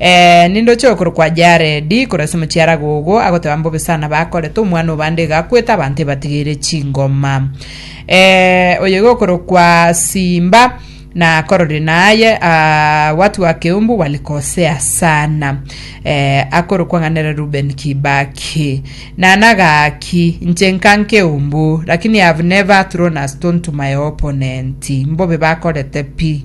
Ee, ninde ochia okorokwa Jaredi, korwa ase omochiaraga ogo, agoteba mbobe sana bakorete omwana obande iga akwete abanto ebatigeire chingoma. Ee, oyo iga okorokwa Simba, na kororire naye aa, watu wa Keumbu walikosea sana. Ee, akorokwa ng'a nere Ruben Kibaki. Nana gaki, inche nka Nkeumbu, lakini I have never thrown a stone to my opponent. Mbobe bakorete pi.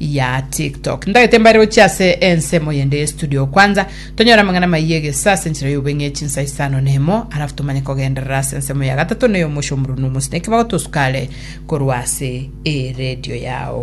ya TikTok. Ndagete mbare gochia ase ensemo yende ye studio kwanza tonyore amang'ana maiye egesa ase enchera y'obeng'e chinsa isano na emo alafu tomanye kogenderera ase ensemo ya gatato na ey'omosio omorunu omosineke bagotosukare korwa ase eredio yao.